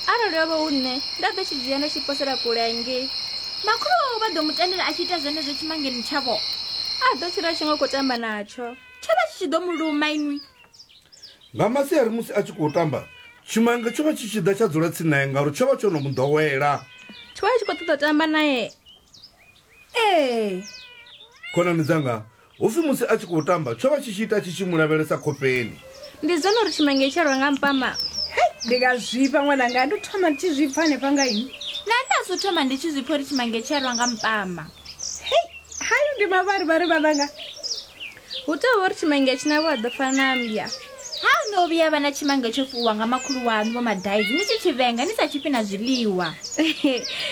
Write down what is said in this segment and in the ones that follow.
arali yo vha hu nṋe nda ḓo tshi dzhia nda tshi posela kule hangei makhulu wawe vha ḓo mu tendela a tshi ita zwenezwo tshimangeni tshavho a ḓo tshila tshi ngo khou tamba natsho tsho vha tshi tshi ḓo mu luma inwi nga masiari musi a tshi khou tamba tshimange tsho vha tshi tshi ḓa tsha dzula tsini naye ngauri tsho vha tsho no mu ḓowela tsho vha tshi khou ṱoḓa tamba naye ee khonani dzanga Hu pfi musi a tshi khou tamba, tsho vha tshi tshi ita tshi tshi mu lavhelesa khofheni. Ndi zwone uri tshimange tsho rwa nga mpama? Hei, ndi nga zwifha ṅwananga, ndo thoma ndi tshi zwi pfa hanefha nga inwi. Na nṋe a zwo thoma ndi tshi zwi pfa uri tshimange tshi a rwa nga mpama. Hei, hayo ndi mavharivhari vhananga. Hu tou vha uri tshimange tshi na vho a ḓo fana na mmbya. Ha ho no vhuya vha na tshimange tsho fuwa nga makhulu waṋu vho madaizi ni tshi tshi vhenga ni sa tshifhi na zwiḽiwa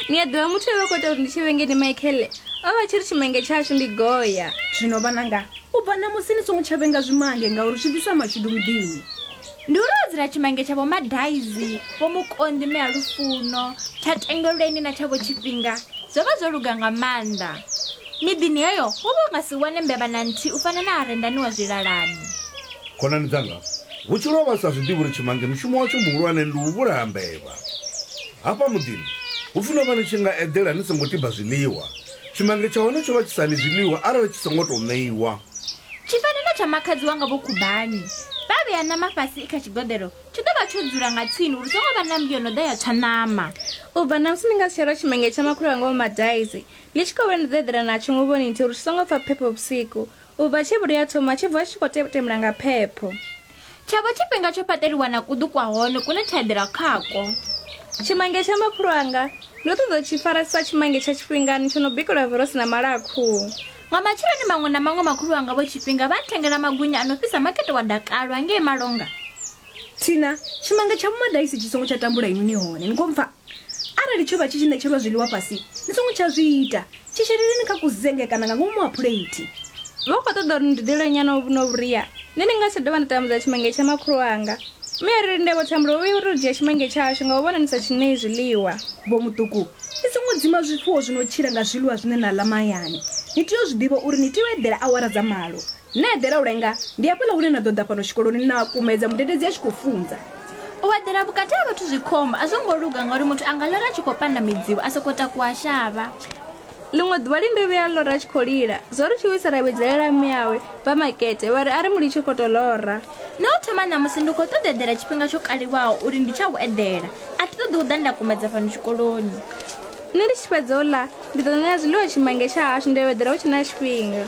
ni a ḓivha muthu we vha khou ita uri ndi tshi vhenge ndi michaele o vha tshi ri tshimange tshashu ndi goya zwino vhananga u bva ṋamusi ni songo tsha vhenga zwimange ngauri zwi ḓisa mashudu muḓini ndi uri o dzula tshimange tsha vho madaizi vho mukonḓi mme a lufuno tsha tengelweni na tsha vho tshifhinga zwo vha zwo luga nga maanḓa Miḓini heyo wo vha u nga si wane mbevha na nthihi u fana na harendani wa zwilalani. Khonani dzanga, vhutshilo ho vha vhu sa zwi ḓivhi uri tshimange mushumo watsho muhulwane ndi u vhulaha mbevha. Hafha muḓini, hu pfi no vha ni tshi nga eḓela ni songo tiba zwiḽiwa. Tshimange tsha hone tsho vha tshi sa ḽi zwiḽiwa arali tshi songo tou ṋeiwa. Tshi fana na tsha makhadzi wanga Vho Khubani. Vha vhea ṋama fhasi i kha tshigoḓelo, tshi ḓo vha tsho dzula nga tsini uri hu songo vha na mmbi yo no ḓa ya tswa ṋama. U bva ṋamusi ni nga si tsha lwa tshimange tsha makhulu wanga Vho Madaisi. Ndi tshi khou vhona ndo ḓo eḓela natsho nguvhoni nthihi uri tshi songo pfa phepho vhusiku. U bva tshe vhuri ya thoma, tsho vuwa tshi tshi khou tetemula nga phepho. Tsha vha tshifhinga tsho fhaṱeliwa na kuḓu kwa hone kune tsha eḓela khakwo. Tshimange tsha makhulu anga! Ndo ṱoḓa u tshi fara sa tshimange tsha tshifhingani tsho no bikelwa vorosi na mala a khuhu. Nga matsheloni maṅwe na maṅwe makhulu wanga vho Tshifhinga vha nthengela magunya a no fhisa makete wa dakalo hangei Malonga. Thina, Tshimange tsha Vho Madaisi tshi songo tsha tambula inwi ni hone, ni khou mpfa? Arali tsho vha tshi tshi ṋetshelwa zwiḽiwa fhasi, ni songo tsha zwi ita. Tshi sheleleni kha kuzenge kana nga ngomu ha phuleithi. Vha khou ṱoḓa uri ni dudele nyana u vhona vhuria, nṋe ndi nga si tsha dovha nda tambudza tshimenge tsha makhulu wanga. Mme a ri, Linde vho Thembela, u vhuya u tou dzhia tshimenge tshashu nga u vhona ni sa tshi ṋei zwiḽiwa. Vho Muṱuku, ni songo dzima zwifuwo zwi no tshila nga zwiḽiwa zwine na ḽa mahayani. Ni tea u zwi ḓivha uri ni tea u eḓela awara dza malo. Na eḓela u lenga, ndi hafhaḽa hune na ḓo ḓa fhano tshikoloni na kumedza mudededzi a tshi khou funza. U eḓela vhukati ha vhathu zwi khombo, a zwo ngo luga ngauri muthu a nga lora a tshi khou panda midzimu, a sokou takuwa shavha. Ḽiṅwe ḓuvha Linde vhuya a lora a tshi khou lila. Zwo ri tshiwisa ra vhidzelela mme awe vha makete vha ri a ri mu litshe khoto lora. No thoma ṋamusi ndi khou ṱoḓa eḓela tshifhinga tsho kaliwaho uri ndi tsha u eḓela. A thi ṱoḓi u ḓa nda kumedza fhano tshikoloni. Nṋe ndi tshi fhedza u ḽa ndi ḓo ṋea zwiḽiwa tshimange tsha hashu nda yo eḓela hu tshe na tshifhinga.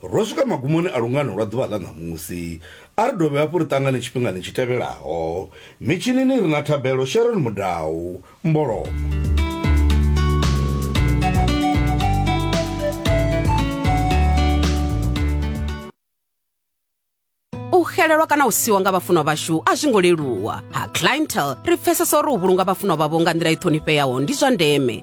Ro swika magumoni a lungano lwa ḓuvha ḽa ṋamusi. A ri dovhe hafhu ri ṱangane tshifhingani tshi tevhelaho. Mitshinini ri na Thabelo Sharon Mudau. Mbolomo. xelelwa kana u siwa nga vhafunwa vhashu a zwi ngo leluwa ha clientele ri pfesesa uri u vhulunga vhafunwa vhavho nga nḓila i ṱhonifheaho ndi zwa ndeme